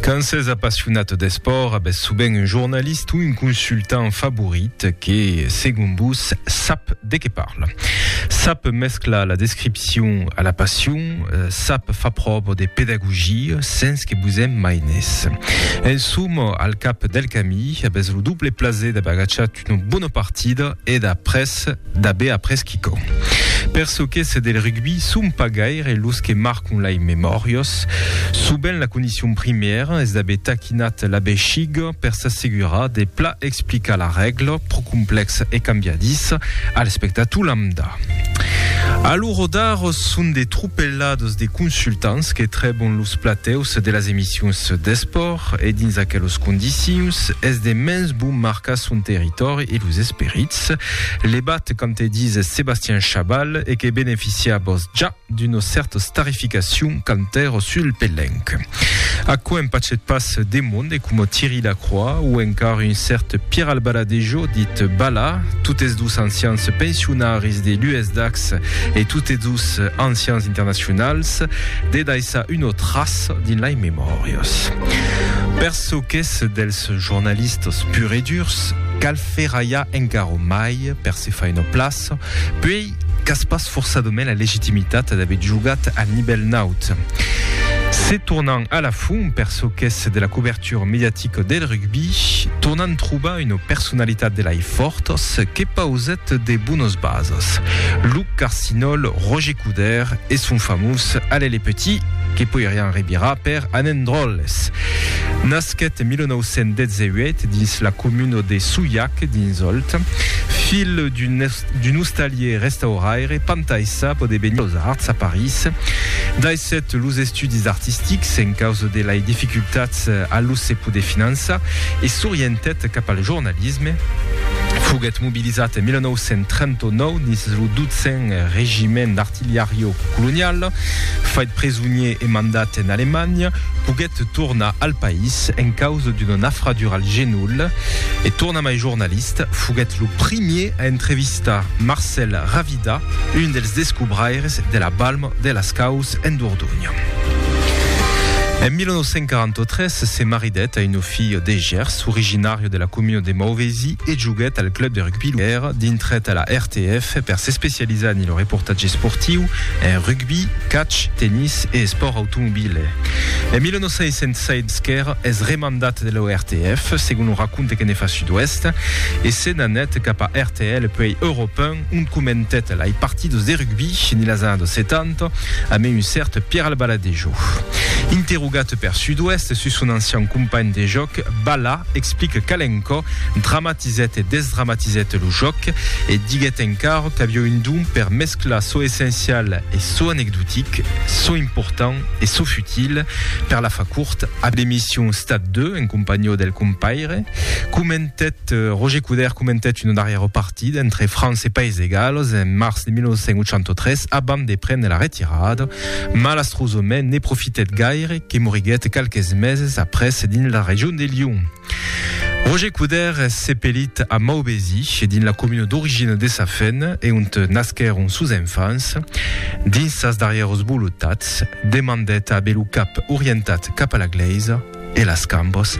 Quand s'es apassionat d'espòrt, avètz sovent un jornalist o un consultant favorit que, segon vos, sap de qué parla. Sap mesclar la descripcion a la passion, sap far pròva de pedagogia sens que vos en maines. En soma, al cap del camí, avètz lo doble plaser d'aver agachat Una bona partida e d'après d'aver après quicò. Per çò qu'es del rugbi, son pas gaire los que marcon lai memòrios. Sovent la condicion primièra es d'aver taquinat la bexiga per s'assegurar de pla explicar la règla, pro complèxa e cambiadissa, a l'espectator lambda. A lo rodar son de tropelades de consultants que trèbon los platèus de las emissions d'espòrt. E dins aquelos condicions, es de mens bon marcar son territòri e los esperits. Levat quand te dis Sébastien Chabal e que beneficiabos ja d'una cèrta starificacion quand èro sul pelenc. Aquò en pachet pas de monde coma Thierry Lacroix o encara un cèrt Pierre Albaladejo dit Bala, totes dos ancians pensionaris de l'USDAX e totes dos ancians internacionals, de daissar una traça. dins lei memòrias. Per çò qu'es dels jornalistas pur e durs, cal ferralhar encara mai per se fai una plaça, puei qu'as pas forçadament la legitimitat d'aver jogat al nivèl naut. Se tornan a la fum per çò qu'es de la cobertura, futur mediatic del rugbi, tornant trobar una personalitat de lai fòrtas que pausèt de bonas basas, Luc Carcinòl, Roger Coudert e son famós Allez les petits, que poirián revirar per Anèn dròlles. Nasquèt en 1918 dins la comuna de Souillac, dins Òlt, filh d'un D'un ostalier restauraire, Pantaissa podé venir los arts a París. Daissèt los estudis artistics en causa de lai dificultats a los se poder finançar e s'orientèt cap al jornalisme. Foguèt mobilizat en 1939 dins lo 12n Regiment d'Artilhario Colonial. Fait presonier e mandat en Alemanha, poguèt tornar al país en causa d'una nafradura al genoll e tornat. Mai jornalist, foguèt lo primier a entrevistar Marcel Ravida, un dels descobraires de la balma de las Caus en Dordogne. En 1943 se maridèt a un filho de Gers, originario de la comuna de Mauvesi, e joguèt al club de rugby Luer, dintret a la RTF per s'especializar en lo reportatge esportiu, en rugby, catch, tennis e espòrt automobile. En 1906 Sker es remandèt Mandat de l'ORTF, segon o raconte que ne fa Sud-Ouest, e se n'anèt cap a RTL puèi Euròp 1, ont comentèt lai partidos de rugbi ne las annados 70 amé un cèrt Pierre Albaladejo. Interrogat per Sud-Ouest sus son ancian companh de jòc, Bala explique qu'Alencò dramatizèt e desdramatizèt lo jòc e diguèt encara qu'aviá un don per mesclar çò essencial e çò anecdotic, çò important, e çò futil, per la far cort, a l'emission Stade 2, en companhió del compaire, comentèt, Roger Couder comentèt una darrièra partida entre França e País de Gales en març de 1983 abans de prene la retirada, malastrosament ne profitèt gaire que moriguèt qualques meses après dins la region de Lyon. Roger Couder es sepelit a Maubèsi, dins la comuna d'origina de sa fèn e ont nasquèron sos enfants. Dins sas darrièras volotats, demandèt a aver lo cap orientat cap a la glèisa e las cambas.